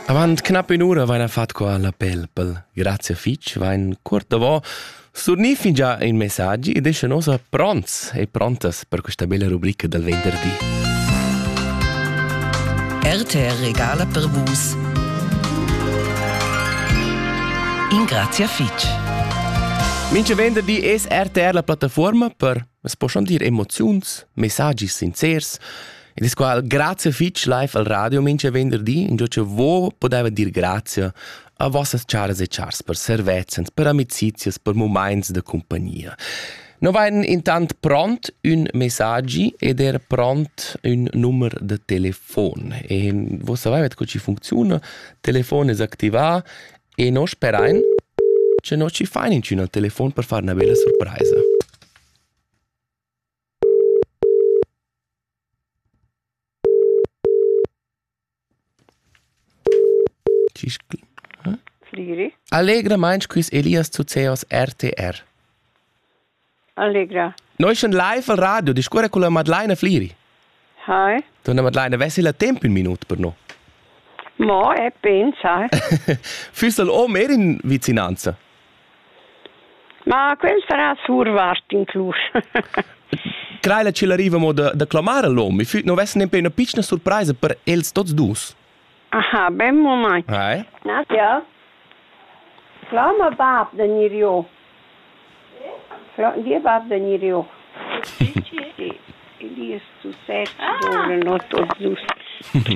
Avant knapp ün'ura vaina fat qua la pelpel. Grazie fich, vain cuort davò surnì fingià in messaggi ed esce nosa pronts e prontas per questa bella rubrica del venderdi. RTR Regala per Vus. In grazia fich. Minche venderdi es RTR la plattaforma per, es po schon dir, emoziuns, messaggi sincers Ed es qua grazia fich live al radio mincha venderdi, ingio cha vo podeva dir grazia a vossas charas e chars per servezzans, per amicizias, per mumaints da compagnia. No vain intant pront ün messaggi ed er pront ün numer da telefon. E vos savevet co ci funcziuna, telefon es activà e no sperain che no ci fain incina telefon per far 'na bella surpraisa. Fliri. Allegramaing quist Elias Zuzeos RTR. Allegra. Noi schon live al radio discorre con la Madeleine Fliri. Hi. Dunna Madeleine, avessi la tempo in minut per noi? Mo, e pensa. Füss el om er in vicinanza? Ma quel sarà survart in clus. Crei la ce l'arriva mo da, da clamare l'om, e füt non vess nempe una piccina surpresa per els tots dus. Aha, ben mumaint. Vai. Nadja, Fla ma bab vegnir giò. Fla, dir bab vegnir giò. Sì, die ist zu sechs geboren und tot dus.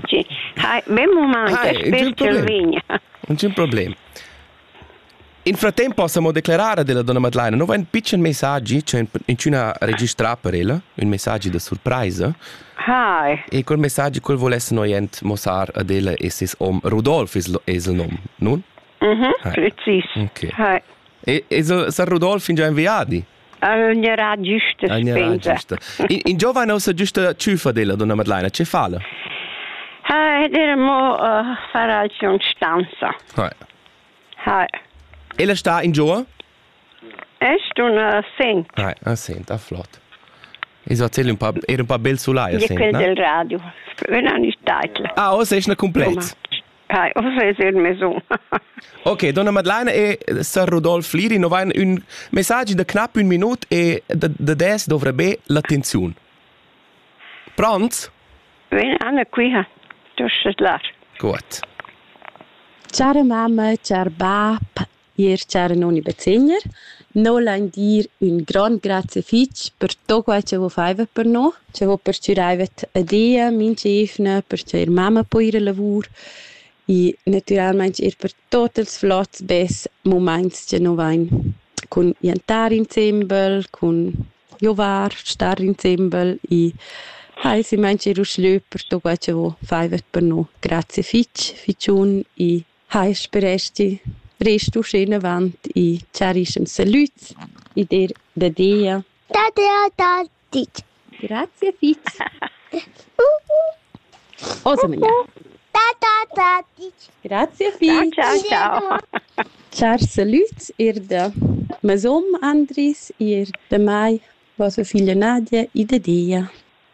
Sì. Hi, ben mumaint, Hi, ich bin Gervinia. Non c'è un problema. In frattemp possa mo declarar ad ella donna Madlaina, no va in pitschen messaggi, c'è incina registrà per ella, un messaggi da surpraisa. Hi. E quel messaggi quel volesse noi ent mossar ad ella e ses om Rudolf es, es il nom, nun? Mhm, precis. Okay. Hi. E, e Sir Rudolf in già inviadi? Alnerà giusta spensa. In, in giovane ossa giusta ciufa della donna Madlaina, ce fa la? Ah, ed era mo uh, fare stanza. Hai. Hai. E la sta in giù? Est una sent. Hai, una sent, ah, flott. Ich so erzähl un paar, era un paar bel sulai, sent, no? del radio. Una ni title. Ah, ossa è una completa. Pai, o se il maison. Ok, donna Madlana e sir Rudolf Liri non vain ün messagi da knapp un minut e da, da des dovrà be l'attenziun. Pronts? Ven Anna qui ha. Du schet lar. Gut. Char mamma, char bab, Ir char noni bezegner, no lain dir ün grond grazie fich per tot quai cha vo faiva per no, cha vo perchüraivet a Dia, minch'eivna, perche ir mamma po ir a lavur e natüralmaing ir per tot ils flots bes mumaints cha no vain cun jantar insembel, cun giovar, star insembel e ha es imaint ir uschlö per tot quai cha vo faivat per no. Grazie fich, fich un e Hai speresti rest uschenavant i chiarischens salüds e dir da Dia. Da Dia da ditg. Grazie fitg. Osa magnà. Da da da ditg. Grazie fitg. Ciao ciao. Char salüds ir da mesom Andris, ir da mai, vostra figlia Nadia e da Dia.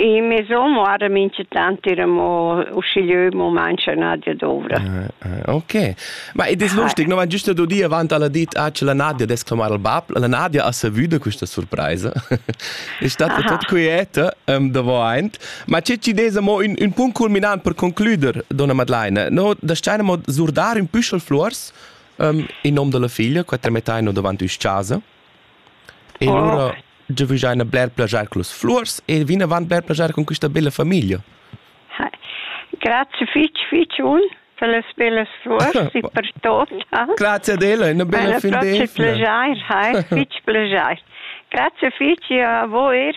In mezz'on moara minchatant ir amo uschigliö mo mancha Nadia dovra. Uh, ok. Ma ed es lustig, no van giusto do di avant alla dit ah c'è la Nadia des clamar al bab. La Nadia ha savuto questa surpresa. è stata tot quieta um, davo aint. Ma c'è ci des amo un, un punct culminant per concluder, donna Madeleine. No, da steinamo zurdar un püschel flors um, in nom della figlia, quattro metà no davanti us casa. E lura giavüschaina bler plaschair cullas fluors e vinavant bler plaschair cun quista bella famiglia. Grazie fich, fich un per las bellas fluors e per tot. Grazie ad ella, una bella fin d'esima. Grazie, fleger, hai, fich pleger. Grazie fich a voi